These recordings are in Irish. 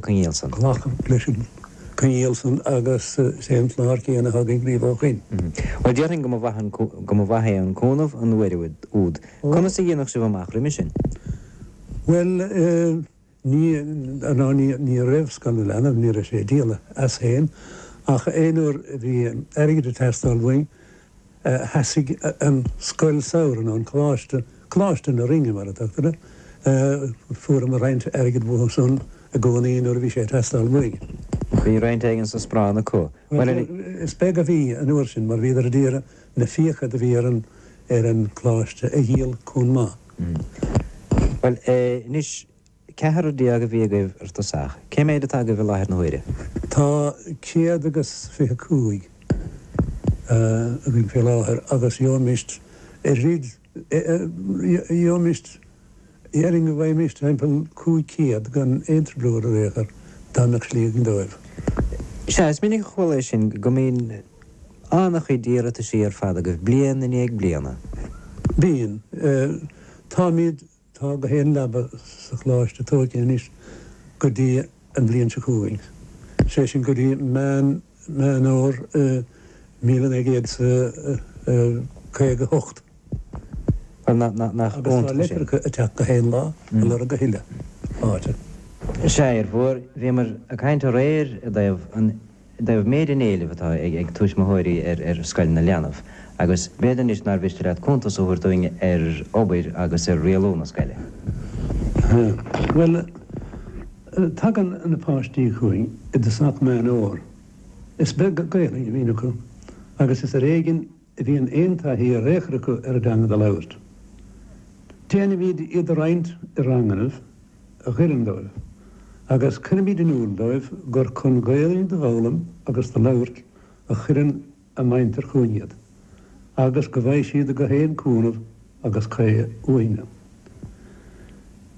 coinníoll san. ghlacadh leis an gcoinníoll san agus is é an clár céanna a thagann riamh ó shin. Bhuel, déarfainn go mba mhaith an, go mba mhaith é an cúnamh an uair úd, úd. Conas a dhéanfadh sibh amach roimhe sin? Bhuel eh, ní, ná ní, ní raibh scoil na leanbh, ní raibh sé díol as féin ach aon uair a bhí airgead ag teastáil uainn, sheasaigh an scoil samhraidh, nó an coláiste, Coláiste na Rinne mar a tugtar air, fuaireamar roinnt airgid uathu san i gcónaí nuair a bhí sé ag teastáil uainn. Bhí roinnt éigin sa bhanc acu. Bhuel is beag a bhí an uair sin mar bhíodar ag iarraidh na fiacha do bhí ar an ar an gcoláiste a dhíol comh maith. Bhuel anois. Ceathrar déag a bhí agaibh ar tosach. Cé méid atá agaibh i láthair na huaire? Tá céad agus fiche cúig againn fé láthair agus gheobhaimist ar thríd gheobhaimist déarfainn go bhfaighimist timpeall cúig céad gan aon trioblóid ar aon chor dá mbeadh slí againn dóibh. Sea, is minic a chuala é sin go mbíonn an-chuid iarrataisí ar fad agaibh bliain i ndiaidh bliana. Bíonn. Táimid. Tá go haon leaba sa Choláiste tóigthe anois go dtí an bhliain seo chugainn, sé sin go dtí Meán Fhómhair 1958, agus tá leitreacha ag teacht go haon lá, ag lorg a thuilleadh áite. Sea, a dheirfiúr, bhíomar ag caint aréir i dtaobh an dtaobh méid an éilimh atá ag tuismitheoirí ar Scoil na Leanbh agus b'fhéidir anois nár mhiste leat cuntas a thabhairt dúinn ar obair agus ar rialú na scoile. Bhuel, tagann na páistí chugainn i dtosach meán fhómhair. Is beag Gaelainn a bhíonn acu agus is ar éigin a bhíonn aon taithí ar aon chor acu ar an dteanga do labhairt. Déanaimid iad a roinnt i rangannaibh a dh'oireann dóibh, agus cuirimid in iúl dóibh gur chun Gaeilge do fhoghlaim agus do labhairt a chuireann a muintir chugainn iad, agus go bhfaighidh siad go haon cúnamh agus caoi uainne.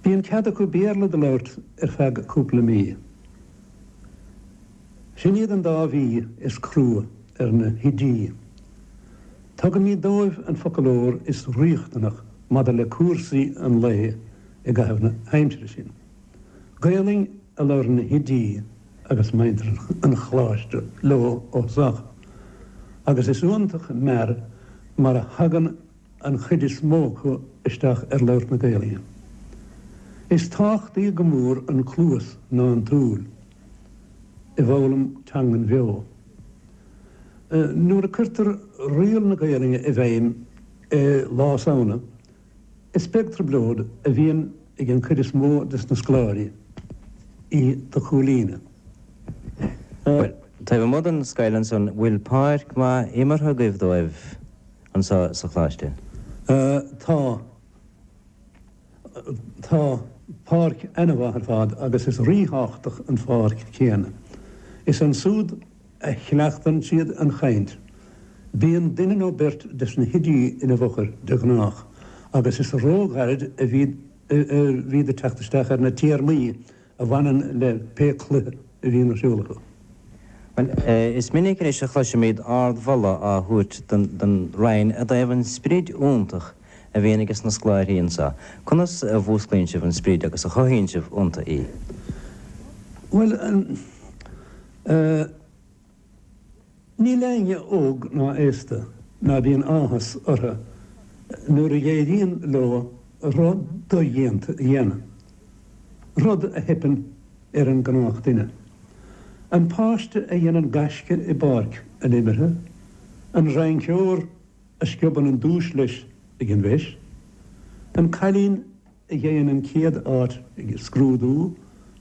Bíonn cead acu Béarla do labhairt ar feadh cúpla mí. Sin iad an dá mhí is crua ar na hoidí. Tugaimid dóibh an foclóir is riachtanach maidir le cúrsaí an lae i gcaitheamh na haimsire sin. Gaelainn a labhraíonn na hoidí agus muintir an Choláiste leo os ard agus is iontach mear mar a thagann an chuid is mó acu isteach ar labhairt na Gaelainne. Is tábhachtaí go mór an cluas ná an tsúil. i bhfoghlaim teangan bheo. Nuair a cuirtear riail na Gaelainne i bhfeidhm i lár Samhna, is beag trioblóid a bhíonn ag an gcuid is mó des na scoláirí í a chomhlíonadh. Bhuel, taobh amuigh den scoil ansan, bhfuil páirc maith imeartha agaibh dóibh anso sa choláiste? Tá. Tá páirc ana-mhaith ar fad agus is rí-thábhachtach an pháirc chéanna. Is ansúd a chleachtann siad an chaint. Bíonn duine nó beirt des na hoidí ina bhfochair de ghnáth agus is ró-ghairid a bhíd ag teacht isteach ar na téarmaí a bhaineann le pé cluiche a bhíonn ar siúl acu. Bhuel, is minic anois a chloisimid ardmholadh á thabhairt don Roinn i dtaobh an sprid iontach a bhíonn ages na scoláirí anso. Conas a mhúsclaíonn sibh an sprid agus a chothaíonn sibh iontu í? Bhuel, an. Níl éinne óg ná aosta ná bíonn áthas orthu nuair a éiríonn leo rud dodhéanta a dhéanamh, rud a theipeann ar an ngnáthdhuine. An páiste a dhéanann gaisce i bpáirc an imeartha, an rinceoir a sciobann an duais leis ag an bhFeis, an cailín a gheibheann an chéad áit ag scrúdú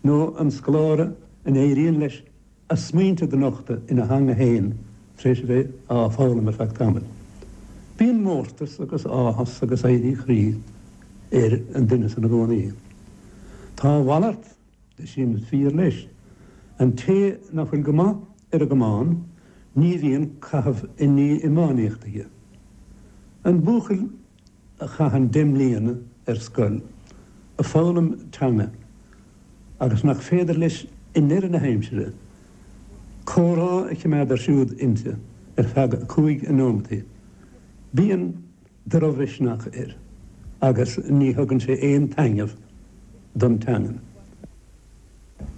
nó an scoláire a n-éiríonn leis a smaointe do nochtadh ina theanga féin tar éis a bheith á foghlaim ar feadh tamaill. Bíonn mórtas agus áthas agus éirí croí ar an duine san i gcónaí. Tá a mhalairt de sin fíor leis, an té nach bhfuil go maith ar an gcamán ní bhíonn caitheamh i ndiaidh iománaíocht aige. An buachaill. a chaitheann deich mbliana ar scoil, ag foghlaim teanga agus nach féidir leis i ndeireadh na haimsire comhrá a choimeád ar siúl inti ar feadh cúig neomataí. Bíonn drochmhisneach air agus ní thugann sé aon taitneamh don teangain.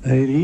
Éiríonn.